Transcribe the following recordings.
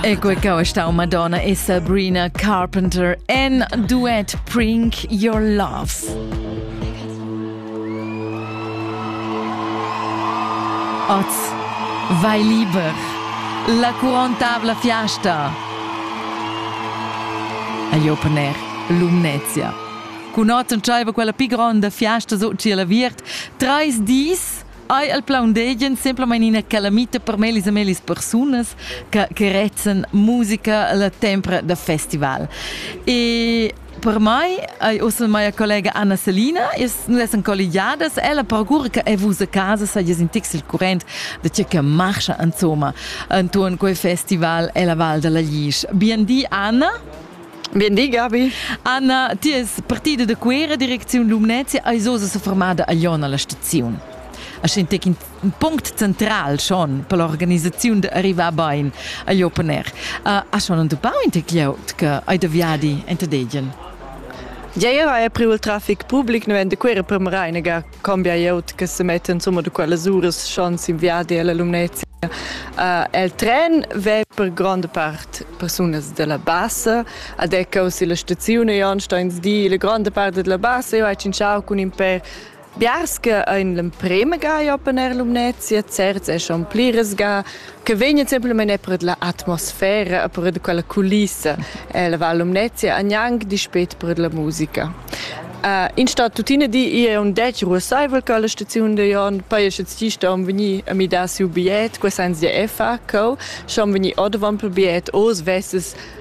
Ecco che sta una donna e Sabrina Carpenter en duet Bring Your Love. Oz vai liber. La couronne tavla fiasta. Agli open air Lumnezia. Cun otten tschaiva quella pi gronda fiasta so ciel aviert. Treis dis Ei el plaundegian semplamein ina calamita per mellis e mellis persunas che, che rezzan musica la tempra da festival. E per mai, ei ussa mia collega Anna Selina, noi essan colligiadas, ella procura che e vus a casa sajas in tix il current de ce che marcha insomma intorno quei festival e la Val della Glisch. Bien di Anna. Bien di, Gabi. Anna, ti es partida da Cuera, direcziun Lumnezia, eis oz seformada a Jon alla staziun. A sentec in punct central schon per l'organisaziun de arrivar bein a Jopener. Uh, ha schon entupau in te glieud che hai da viadi in te degen? Ja, ja, è priu il traffic public, ne vende Cuera per Marainaga cambia eu che se metta insomma da quellas uras schon sin viadi alla Lumnezia. Uh, el tren vè per grande part persunas della bassa, ad ecco si la stazione Jonsteins di la grande parte della bassa, io ho cinciau con in per Biarske in l'emprema ga open air Lumnezia, certs è schon pliras ga, che vegn semplamein er per la atmosfera e per quella culissa e la Val Lumnezia gnanc dispet per la musica. Uh, in sta tutina di è un dec ruosaivel che la staziun de Jon poi che ci sta un veni a mi da siu biet, questa ans de effa, co, schon veni odavan per biet os vesses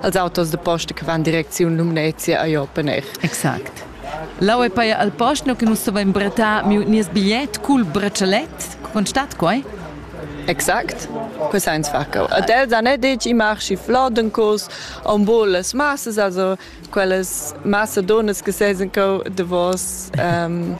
als autos de posta che van direcziun Lumnezia a Jopener. Exact. Lau è paia al posto che nus dovein bretar miu nies bigliet cul braccialet. Con stat quai? Exakt. Questa è sfacco. Ad els han detto i marschi flodencos, on boles masses, also quelles Macedones che seisen co de vos um,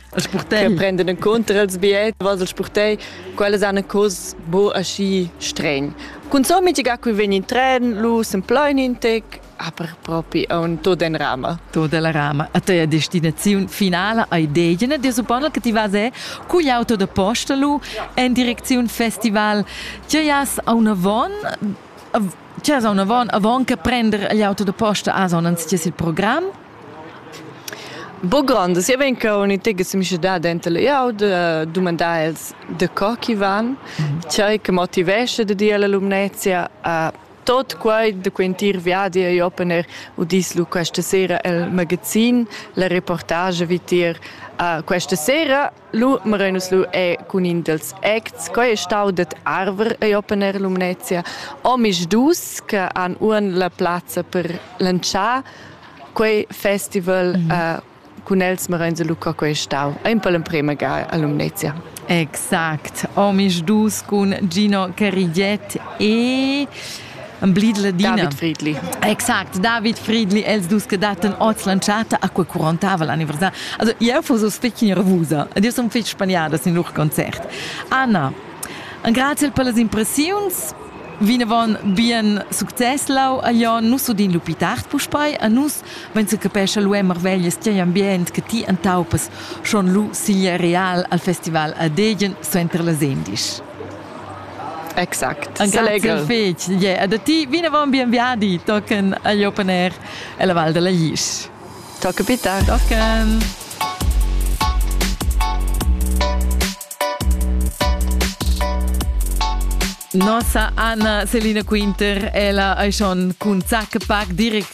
che prenden in conto als biet, was el spurtei, quelles han cos bo aschi streng. Cunzò mitiga cui vegn in tren, lu s'emploin in tec, aber propi aun tot en rama. Tot della rama. A teia destinaziun finala ei degina dir supponel che ti vas è cugl auto da posta lu en direcziun festival. Tgei has aunavon? Tgei has aunavon avon che prender gli auto da posta? Has aunans ties il program? Bo grond, sia vegn co un'utegga semischedà denter glieud, eh, dumandar els da co chi van, tgei che motivescha da dir alla Lumnezia a tot quei da quei entir viadi e open air udis lu questa sera el magazin, la reportage vitier uh, questa sera Lu merein nus lu è cun in dals acts, quei è stau dad arver ei opener Lumnezia. Omisdus che han uan la plazza per lantschar quei festival mm -hmm. uh, cun els merein se Luca quei stau. Ein per l'emprema ga a Lumnezia. Exact. Omisdus cun Gino Carigiet e Emblid Ladina. David Friedli. Exact, David Friedli, els dus che dattan oz l'entschatta a quei curontava l'anniversar. Also, jeu fus uss fetg nervusa ed io sun fetg spaniada sin lur concert. Anna, grazie per las impressiuns. Vinavon bien success lau a Jon, nus udin lu pli tard puspei a nus vegn se capescha lu marveglias tier ambient che ti entaupas schon lu sigl real al festival a Degen suenter las endisch. Exact. Anche legro. Fec. Yeah. E da ti vinavon bien viadi, tochen agli open air e la Val della Glisch. Tocca pita. Tochen. Nossa Anna Selina Quinter è la Aishon cun Zack Park direct